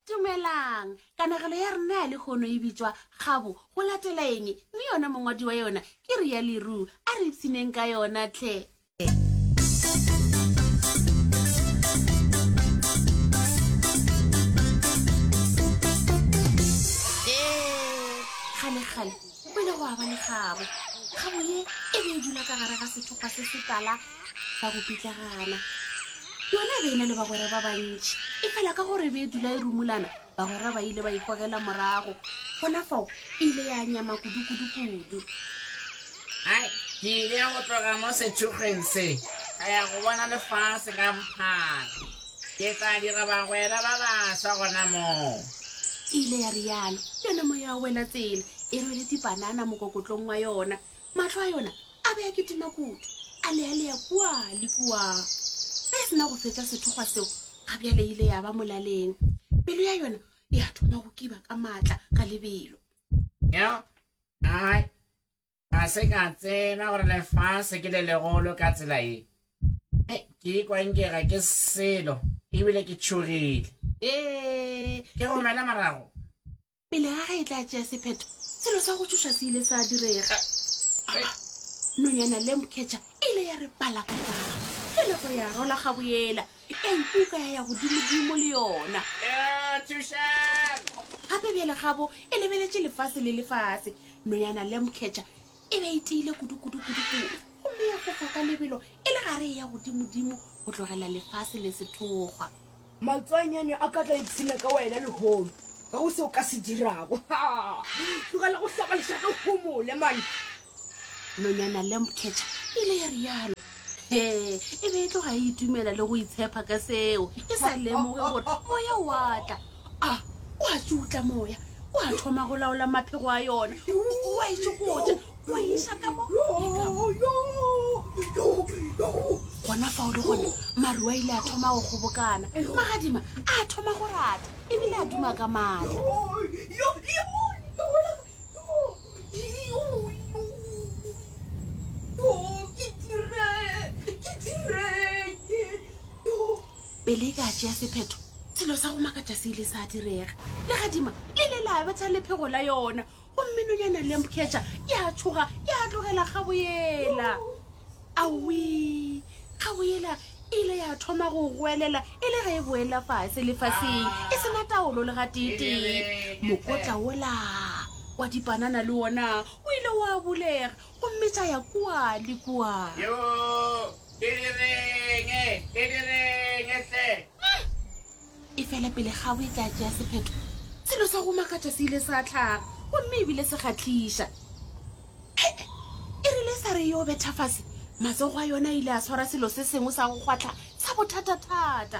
Dumelang! Kanegelo ya rena ya lehono e bitšwa Kgabo go latela eng, mme yona mongwadi wa yona ke Ria Le Roux. A re ipshineng ka yona hle! Kgalekgale go ile gwa ba le kgabo. Kgabo ye e be e dula ka gare ga sethokgwa se se tala. sa go pitlagana yona e be e na le bagwera ba bantši e fela ka gore e be e dula e rumulana bagwera ba ile ba ikgogela morago gona fao e ile ya nyama kudu-kudu-kudu ai ke ile ya go tloga mo sethugeng se ka ya go bona lefase ka bophara ke tla dira bagwera ba baswa gona moo e ile ya rialo yona moya wa wela tsela e rwele dipanana mokokotlong wa yona Mahlo a yona a be a kitima kudu, a lealea kua le kua. Ge e se na go fetša sethokgwa seo, ga bjale e ile ya ba molaleng. Pelo ya yona ya thoma go kiba ka matla ka lebelo. Yo, ai, ga se ka tseba gore lefase ke le legolo ka tsela ye. Hei, ke ikwa nke ga ke selo ebile ke tšhogile. Ee, Ke go mela morago. Pele ga ge e tla tšea sephetho, selo sa go tšhoša se ile sa direga. Nonyana Lambcatcher e ile ya re pala ka tlala ge nako ya rola gaboyela, ya ikuka ya ya godimodimo le yona. Gape bjale gabo e lebeletše lefase le lefase, Nonyana Lambcatcher e be e tiile kudu-kudu-kudu-kudu gomme ya fofa ka lebelo e le gare e ya godimodimo go tlogela lefase le sethokgwa. Matswanyane a ka tla ipshina ka wena lehono. Ga go se o ka se dirago. Tlogela go hloka lešaka o homole mane. Nonyana Lamb Catcher e ile ya rialo. He, e be e tloga e itumela le go itshepa ka seo, e sa lemoge gore moya o a tla. A o a tšutla moya, o a thoma go laola maphego a yona. O a itšokotša, Go iša ka mo e ka mo. Gona fao le gone maru a ile a thoma go kgobokana. Magadima a thoma go rata ebile a duma ka matla. Pele e ka tšea sephetho, selo sa go makatša se ile sa direga. Legadima le ile la betha lephego la yona. Gomme nonyana Lambcatcher e a tšhoga, e a tlogela kgabo yela. Awii! Kgabo yela e ile ya thoma go goelela e le ge e boela fase lefaseng, e se na taolo le gateetee. Mokotla wola wa dipanana le wona o ile wa bulega gomme tša ya kua le kua. Yo! Ke direng? Ke direng hle? e fela pele ga o e ka tšea sephetho selo sa go makatša se ile sa tlhaga gomme ebile se kgatlhiša ee e rile sa re yo betha fase matsogo a yona ile a tshwara selo se sengwe sa go kgwatlha sa bothata-thata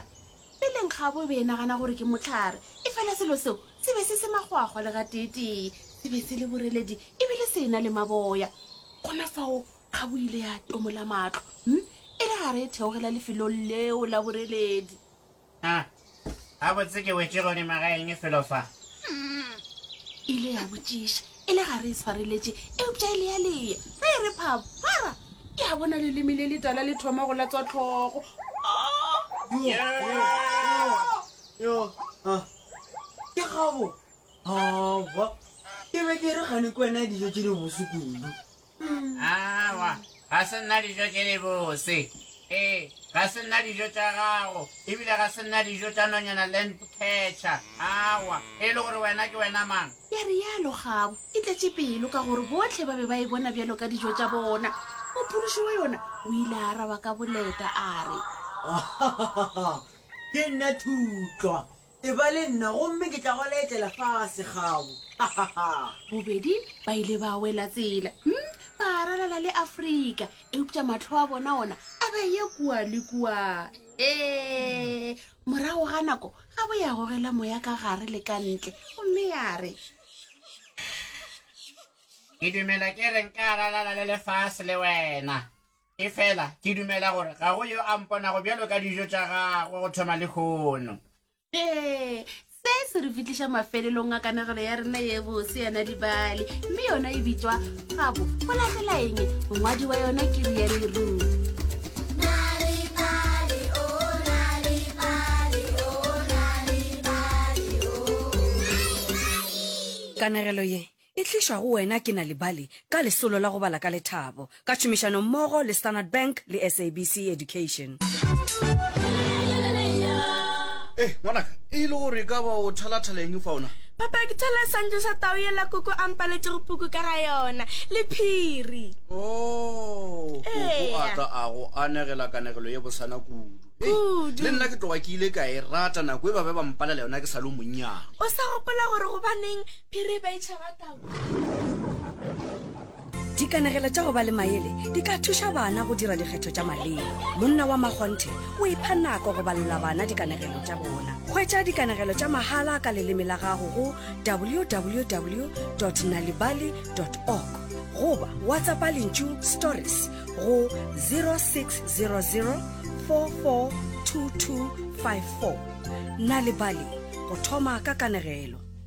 peleng ga bo be e nagana gore ke motlhare e fela selo seo se be se se magwagwa le ga teetee se be se le boreledi ebile se e na le maboya gona fao ga bo ile ya tomola matlho m e le gare e theogela lefelong leo la boreledi A, gabotse ke wetše godima ga eng felo fa? Mm, ile ya botšiša, e le ga re e swareletše, eupša e lealeya, ge e re phaphara, ke a bona leleme le letala le thoma go latswa tlhogo. Yo, a, ke gabo. Awa, ke be ke re kgane ke wena ya dijo tše di bose kudu. Aowa, ga se nna dijo tše dibose. Ee, ga se nna dijo tša gago, ebile ga se nna dijo tša nonyana Landcatcher. Aowa, e le gore wena ke wena mang? Ya realo kgabo e tletše pelo ka gore bohle ba be ba e bona bjalo ka dijo tša bona. Mophološi wa yona o ile a araba ka boleta a re. Ke nna Thutlwa, Eba le nna, gomme ke tla go laetšela fase gaabo. Hahahaa! Bobedi ba ile ba wela tsela, hm, ba ralala le Afrika, eupša mahlo a bona ona a ba ye kua le kua. Ee, morago ga nako, gabo ya gogela moya ka gare le ka ntle, gomme ya re, Ke dumela ke re nka ralala le lefase le wena. Efela ke dumela gore ga go yo a mponago bjalo ka dijo tša gagwe go thoma lehono. Ee, se se re fitliša mafelelong a kanegelo ya rena ye bose ya Nadibale, mme yona e bitšwa Gabo go latela eng? Mongwadi wa yona ke Riane Roof. Kanegelo ye e tlišwa go wena ke Nal'ibali ka lesolo la go bala ka lethabo ka tšhomišano mmogo le Standard Bank le SABC Education. Ee, ngwanaka, e e le gore e ka ba o thalathala eng fao na? Papa, ke thola seswantšho sa tau yela Koko a mpaletšego puku ka ga yona, le phiri. Oo, Koko a Eya. tla a go anegela kanegelo ye bosana kudu. Hei, Kudu. le nna ke tloga ke ile ka e rata nako e ba be ba mpalela yona ke sa le o monnyane. O sa gopola gore gobaneng Phiri ba itšhaba tau. Dikanegelo tša go ba le maele di ka thuša bana go dira dikgetho tša maleba. Monna wa Makgonthe o ipha nako go balela bana dikanegelo tša bona. Hwetša dikanegelo tša mahala ka leleme la gago go www nalibali org goba WhatsAppa lentšu stories go 0600 442254. Nalibali, go thoma ka kanegelo.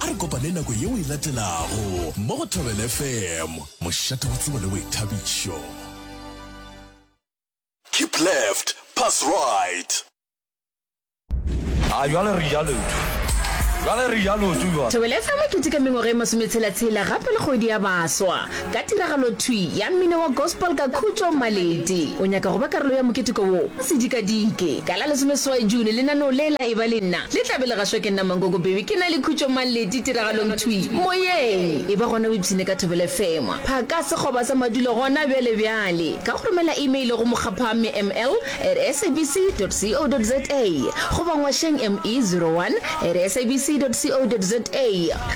A re kopane nako yeo e latelago mo go Thobela FM, mošate wa tsebo le boithabišo. Keep left, pass right. A jwale re ja leoto. Jwale re ja leoto jwale. Thobela FM e keteka mengwaga e masometshela-tshela gape le kgwedi ya baswa. Ka tiragalothwi ya mmino wa gospel ka khutšo, Maleti o nyaka go ba karolo ya moketeko wo. Sedikadike, ka la lesomeseswai June, lenaneo le la Eba le Nna le tla be le gašwa ke nna Mankoko Bhebhi, ke na le Khutšo Maleti tiragalongthwi moyeng. E ba gona o ipshine ka Thobela FM, phaka sekgoba sa madulo gona bjalebjale ka go romela email go Mokgaphamme ML. at sabc.co.za goba ngwašeng ME01 at sabc.co.za.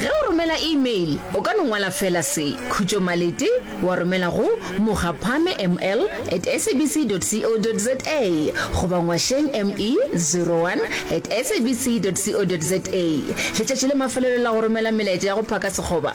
Ge o romela email, o ka no ngwala feela se, Khutšo Malete, wa romela go Mokgaphame ML at sabc.co.za goba ngwašeng ME01 at sabc.co.za. Letšatši la mafelelo la go romela melaetša ya go phaka sekgoba